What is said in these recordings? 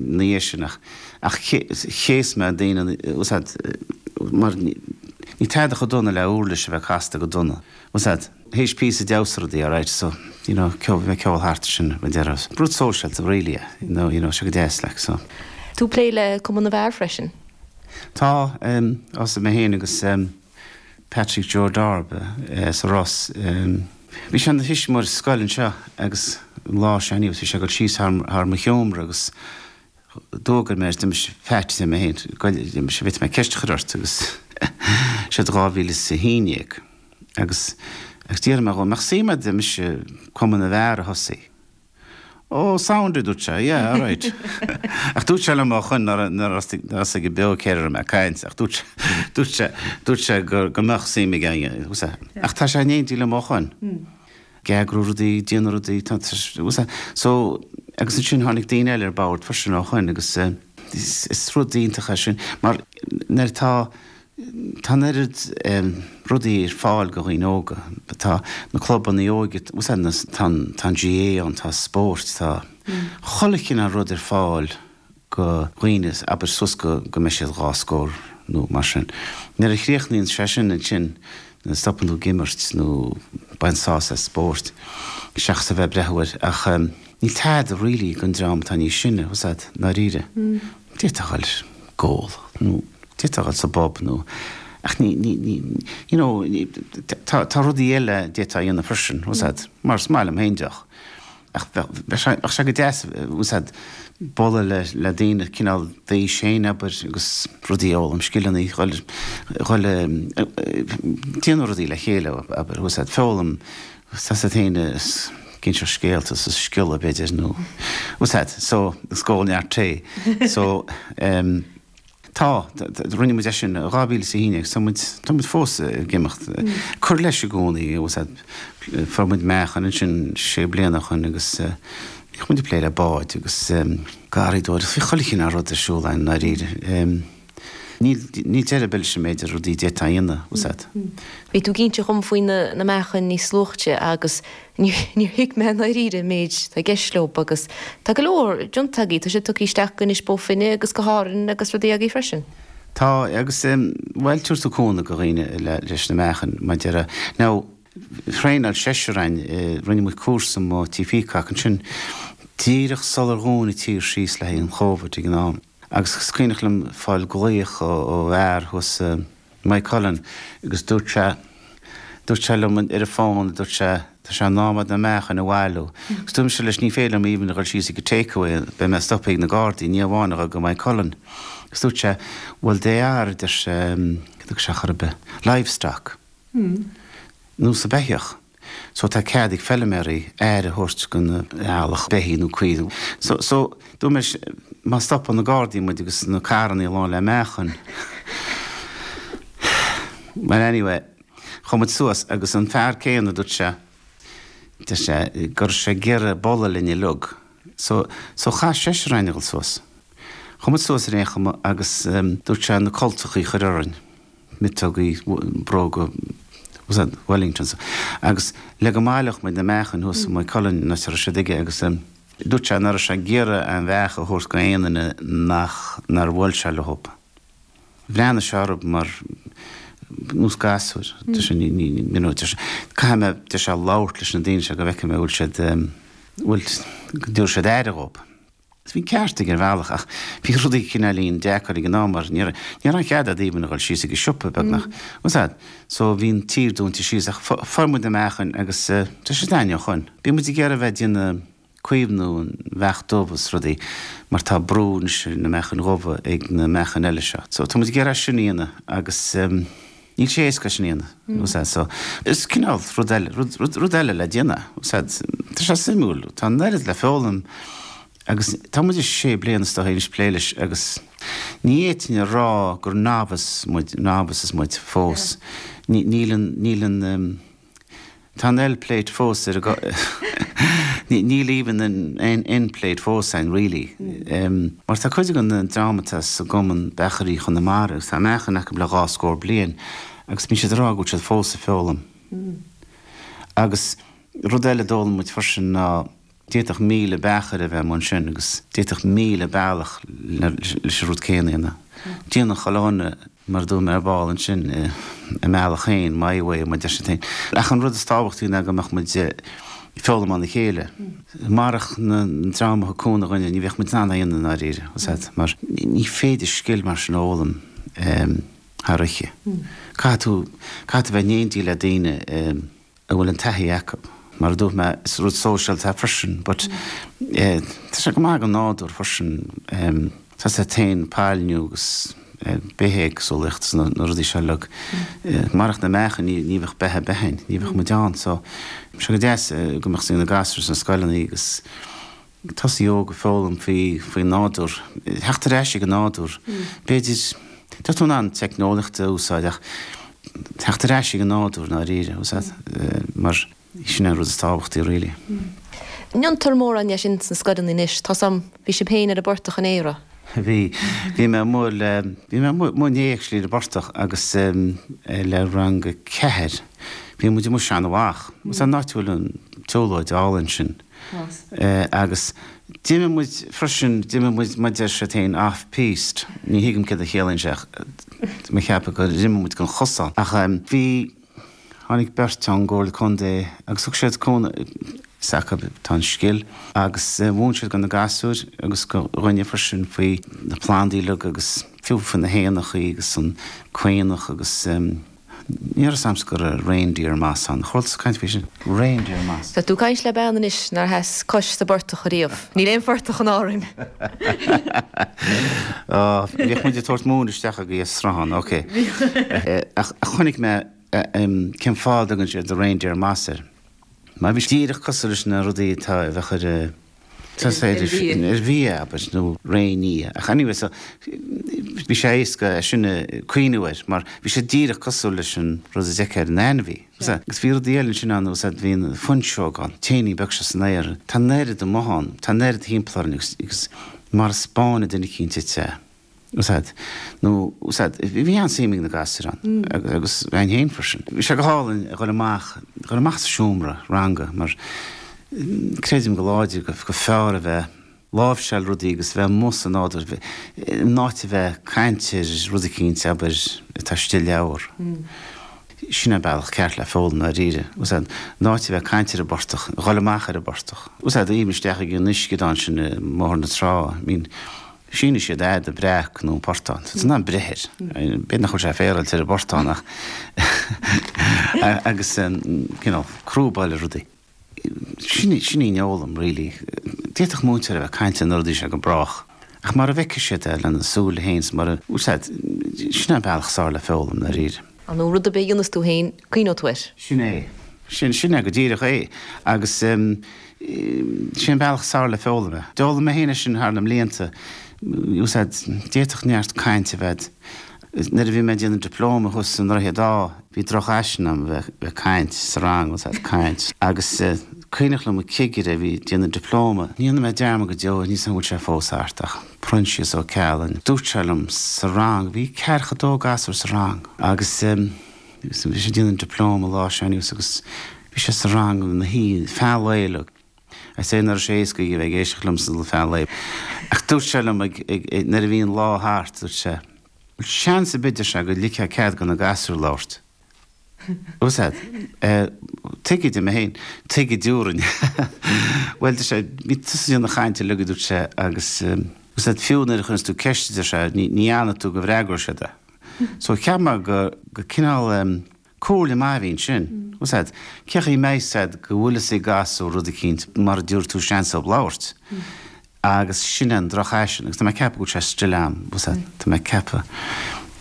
dhiaidh sin ach chéas mé daoine bhfuil a fhios agat mar níl tada chomh dona le uirlis a bheith casta go dona bhfuil a fhios agat th'éis píosa damhsa rudaí alright so you know ceol bheith ceol thart ar sin mar a déarfá rud sóisialta really yeah you know you know seo go deas like so. tú plé le Cumann na bhFear freisin? Tá, em, thosaigh mé féin agus, em, Patrick Joe Darby as Ros. Bhí sé ina thuismitheoir sa scoil anseo agus an lá seo anyway bhí sé ag dul síos thar mo sheomra agus d'fhógair mé air, a deirimse Phat liom é féin, a deirimse, an bhféadfadh mé ceist a chur ort agus seo i 2011 agus agus d'fhiafraigh mé dhó an mbeadh suim agat, a deirimse, Cumann na bhFear a thosaí. Oh, sound, a dúirt sé. Yeah, all right. Ach dúirt sé liom ó shoin, ní raibh a fhios aige beo céard air a raibh mé ag caint, ach dúirt sé, dúirt sé, dúirt sé go, go mbeadh suim aige ann, fhios agat? Ach tá sé in éindí liom ó shoin. Ag eagrú rudaí, déanamh rudaí, tá, tá a fhios agat? So, agus ansin tháinig daoine eile ar bord freisin ó shoin agus, eh, is, is rud iontach é sin, mar nuair atá Tá an oiread rudaí ar fáil do dhaoine óga. Tá na clubanna óige, bhfuil a fhios agat, na, tá an, tá an GAA ann, tá spóirt, tá chuile chineál rud ar fáil do dhaoine, abair suas go, go mbeidh siad dhá scór nó mar sin. Nuair a chríochnaíonn sé sin, ansin stopann tú ag imirt nó baint sásamh as spórt seachas a bheith ag breathnú air. Ach níl tada really ag an dream atá níos sine, bhfuil a fhios agat, ndáiríre. d'fhéadfá a ghoil ag ól nó d'fhéadfá a ghoil sa bpub nó ach ní ní ní you know tá tá rudaí eile a d'fhéadfá a dhéanamh freisin bhfuil a fhios agat mar is maith liom féin deoch ach bheadh bheadh sé bheadh sé go deas bhfuil a fhios agat bualadh le le daoine cineál d'aois féin abair agus rudaí a fhoghlaim scileanna a ghoil a ghoil ag déanamh rudaí le chéile abair bhfuil a fhios agat foghlaim Tá a fhios agat féin is ag inseacht scéalta is ag sciolladh b'fhéidir nó bhfuil a fhios agat so is ag ól neart tae so em tá rinne muid é sin i 2000 is a haon déag agus tá muid tá muid fós ag imeacht cur leis i gcónaí bhfuil a fhios agat fuair muid meachain ansin sé bliana ó shoin agus bhíodh muid ag plé le báid agus em garraíodóireacht bhí chuile chineál rud ar siúl ann ndáiríre em. Níl deireadh ar bith leis an méid rudaí a d'fhéadfá a dhéanamh, bhfuil a fhios agat. Bhí tú ag inse dhom faoi na meachain níos luaithe agus níor thuig mé i ndáiríre an méid atá i gceist leo agus tá go leor déanta agaí, tá siad tugtha isteach go Inis Bó Finne agus go hÁrainn agus rudaí agaí freisin. Tá agus bhuel thabharfadh tú cúnamh go dhaoine leis na meachain mar a déarfá now thraenáil seisear againn, rinne muid cúrsa amuigh tigh Peacock ansin díreach sular dhún an tír síos le haghaidh an Chovid ag an am. Agus is cuimhneach liom fáil glaoch ó fhear thuas i Maigh Cuilinn agus dúirt sé, dúirt sé liom ar an fón, a dúirt sé, tá sé in am a'd na meachain a bhailiú. Agus dúirt mise leis ní féidir liom even a dhul síos ag an Takeaway, beidh mé stoptha ag na Gardaí, ní amháin a dhul go Maigh Cuilinn. Agus dúirt sé, bhuel they are, a deir sé, céard a dúirt sé chor ar bith, livestock, nós beithíoch. so tá cead ag feiliméaraí aire a thabhairt don eallach, beithígh nó caoirigh nó so, so dúirt mé má stopann na gardaí muid agus na carrannaí lán le meachain well anyway chuaigh muid suas agus an fear céanna dúirt sé, deir sé go raibh sé ag iarraidh bualadh linn uilig so, so chaith seisear againn a dhul suas. Chuaigh muid suas ar aon chuma agus dúirt sé na cultachaí a chur orainn. miotógaí, bróga Wellingtons, agus le go mbaileodh muid na meachain thuas i Maigh Cuilinn an áit a raibh siad aige, agus dúirt sé nach raibh sé ag iarraidh na meachain a thabhairt go aon duine nach, nár bhuail sé leo. Bhreathnaigh sé orm mar, nós gasúir, deir sé, ní, ní, you know, deir sé, caithfidh mé, deir sé, labhairt leis na daoine seo go bhfeicfidh mé an bhfuil siad, an bhfuil, go dtabharfaidh siad aire dhób. Bhí an ceart aige ar bhealach ach bhí rudaí cineáilín deacair ag an am mar ní raibh aon chead a'd even a dhul síos ag an siopa, beagnach. Tá a fhios a'd, so bhí an tír dúinte síos ach fuair muid na meachain agus tá siad a'inn ó shin. Bíonn muid ag iarraidh a bheith déanamh caomhnú an mheach dubh is rudaí mar tá brú anois ar na meachain dhubha ag na meachain eile seo. So tá muid ag iarraidh sin a dhéanamh agus. Níl sé éasca sin a dhéanamh, tá a fhios a'd, so is cineál rud eile, rud, rud, rud eile le déanamh, tá a fhios a'd. Tá sé suimiúil, tá an oiread le foghlaim agus tá muid ag sé bliana is dóigh anois plé leis agus ní fhéadfainn a rá gur novice muid, novices muid fós. Ní, níl an, níl an. Tá an L Plate fós orainn. Níl even an N Plate fós a'inn really mar tá cuid den dream atá sa gCumann Beachairí Chonamara agus tá meachain acu le dhá scór bliain agus bíonn siad ag rá go bhfuil siad fós ag foghlaim agus rud eile a d'fhoghlaim muid freisin ná D'fhéadfadh míle beachair a bheith amuigh ansin agus d'fhéadfadh míle bealach leis an rud céanna a dhéanamh. Déanann chuile dhuine mar a dúirt mé ar ball ansin, a mbealach féin, my way, mar a deir siad féin. Ach an rud is tábhachtaí ná go mbeadh muid ag foghlaim óna chéile. Marach an dream a thug cúnamh dhúinne, ní bheadh muid in ann é a dhéanamh i ndáiríre, tá a fhios a'd, mar ní féidir scil mar sin a fhoghlaim thar oíche. Caithfidh tú, caithfidh tú a bheith in éindí le daoine a. a bhfuil an taithí acu. Mar a dúirt mé, is rud sóisialta é freisin, but tá sé go maith don nádúr freisin, tá a fhios a'd, ó thaobh pailniú agus bithéagsúlaíocht is na rudaí seo uilig, marach na meachain ní bheadh beatha ar bith ann, ní bheadh muid ann, so, sé go deas go mbeadh a fhios ag na gasúir sna scoileanna agus. ag tosú óg ag foghlaim faoin nádúr, ag teacht ar ais ag an nádúr, b'fhéidir, tá tú in ann teicneolaíocht a úsáid ach teacht ar ais ag an nádúr i ndáiríre, mar sin an rud is tábhachtaí really. Ní dhéantar mórán dhe sin sna scoileanna anois, tá a fhios agam, bhí sibh féin ar an bportach inné? Bhí, bhí mé amuigh le, bhí mé amuigh, amuigh inné actually ar an bportach agus le rang a ceathair, bhí muid amuigh sa Seanadh Mhach, is an áit a bhfuil an tsiúlóid álainn sin, Agus d'imigh muid freisin, d'imigh muid, mar a deir siad féin, off-piste. Ní thuigim céard a chiallaíonn sé ach mé ag ceapadh gur imigh muid den chosán. Ach bhí, tháinig beirt ón gComhairle Contae agus thug siad cúnamh, is acu, tá an scil, agus mhúin siad do na gasúir agus dúinne freisin faoi na plandaí uilig agus fiú faoi na héanachaí agus an caonach agus. Níl a fhios agam faoin reindeer moss an. Chuala tusa caint faoi sin. Reindeer moss. Tá tú ag caint le bean anois nár sheas cois sa bportach ariamh. Níl aon phortach in Árainn. Ó, bhíodh muid ag tabhairt móin isteach ag an Sruthán, ok. Ach chonaic mé cén fáth a dtugann siad reindeer moss air. Mar bhí sé díreach cosúil leis na rudaí atá a bheadh ar. Tá a fhios agat ar fhia abair, nó réinfhia. Ach anyway so bhí sé éasca é sin a chuimhniú air mar bhí sé díreach cosúil leis an rud a d'fheicfeá ar an ainmhí. Agus bhí rudaí eile ansin ann, tá a fhios agat, bhí an fuinseog ann, t-éinín beag seo san aer, tá an oiread de ann, tá an oiread thimpeall orainn agus mara spáineann duine eicínt duit é. Tá a fhios agat, nó tá a fhios agat, bhí an-suim ag na gasúir ann, agus againn féin freisin. Bhí sé go hálainn a dhul amach, a dhul amach as an seomra ranga, mar creidim go láidir gur fearr a bheith ag láimhseáil rudaí agus a bheith amuigh sa nádúr, in áit a bheith ag caint ar rud eicínt, abair, atá istigh i leabhar. Sin é an bealach ceart le foghlaim, ndáiríre. Tá a fhios agat, in áit a bheith ag caint ar an bportach, a dhul amach ar an bportach. Tá a fhios agat, a ghabháil isteach ag an uisceadán sin i mBóthar na Trá, I mean, Sin a fheiceann siad an breac nó an portán. Is in ann breith air. B'fhéidir nach bhfuil sé féaráilte ar an bportán ach agus an you know crúba is rudaí. Sin sin í an fhoghlaim really. D'fhéadfadh múinteoir a bheith ag caint ar na rudaí seo go brách ach mara bhfeicfidh siad é lena súile féin 's mara, tá a fhios agat, sin é an bealach is fearr le foghlaim, ndáiríre. An rud a b'fhéidir a dhéanas tú féin. Cuimhneoidh tú air? Sin é. Sin, sin é go díreach é. Agus eh, sé an bealach is fearr le foghlaim é. D'fhoghlaim mé féin é sin thar na blianta. Tá a fhios agat, d'fhéadfadh neart caint a bheith, nuair a bhí mé ag déanamh dioplóma thuas i nDroichead Átha, bhí drochfhaisean agam a bheith, bheith ag caint sa rang, tá a fhios agat, ag caint. Agus eh, cuimhneach liom an cigire a bhí ag déanamh dioplóma, ní dhéanfaidh mé dearmad go deo, níl a fhios agam an bhfuil sé fós thart ach, Proinsias Ó Ceallaigh, dúirt sé liom sa rang, bhí ceathracha dó gasúr sa rang agus eh, Bhí mise ag déanamh dioplóma lá sin agus bhí sé sa rang ina shuí feadh lae le, I'd say nach raibh sé éasca a bheith ag éisteacht liomsa feadh lae. Ach dúirt sé liom ag, nuair a bhí an lá thart, dúirt sé, Bhuel, seans b'fhéidir, a deir sé, go ligfeá cead go na gasúir labhairt. Bhfuil a fhios agat? Tuige, a deir mé féin, tuige diúrainn. Bhuel, deir sé, bhí tusa ag déanamh na cainte uilig, a dúirt sé, agus, bhfuil a fhios agat, fiú nuair a chuireanns tú ceist, a deir sé, ní fhanann tú go bhfreagróidh siad é. So cheap mé gur gur cineál em comhairle maith a bhí ansin. Bhfuil a fhios agat, cén chaoi a mbeidh a fhios agat go bhfuil a fhios ag gasúr rud eicínt mara dtabharfaidh tú seans dóibh labhairt. Agus sin é an drochfhaisean agus tá mé ag ceapadh go bhfuil sé still agam. Bhfuil a fhios agat, tá mé ag ceapadh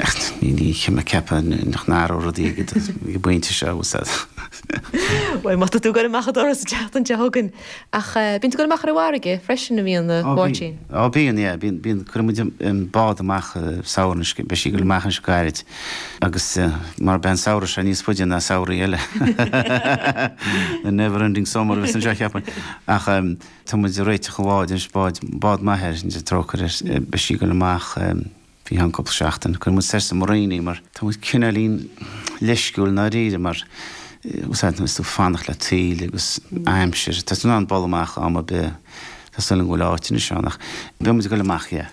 ach ní ní cheap mé ag ceapadh nach n-athróidh rudaí ag an bpointe seo. Bhfuil a fhios agat. Bhuel má tá tú ag goil amach an doras an tseachtain seo chugainn, Ach bíonn tú ag dul amach ar an bhfarraige freisin an mbíonn, a Mháirtín? Ó bíonn, yeah. Bíonn, bíonn. Cuireann muid an bád amach sa samhradh anois, beidh sí ag dul amach anois go gairid agus mar beidh an samhradh seo níos faide ná samhraí eile the never ending summer a bheas anseo cheapfainn ach tá muid ag réiteach an bháid anois, bád, bád m'athar, trócaire air, beidh sí ag dul amach. Faoi cheann cúpla seachtain. Cuireann muid soir sa marina í mar tá muid cineáilín leisciúil i ndáiríre mar bhfuil a fhios agat tú is tú fanacht le taoille agus aimsir. Tá tú in ann dul amach am ar bith. Tá súil agam go bhfuil áit anois ann ach beidh muid ag dul amach, yeah.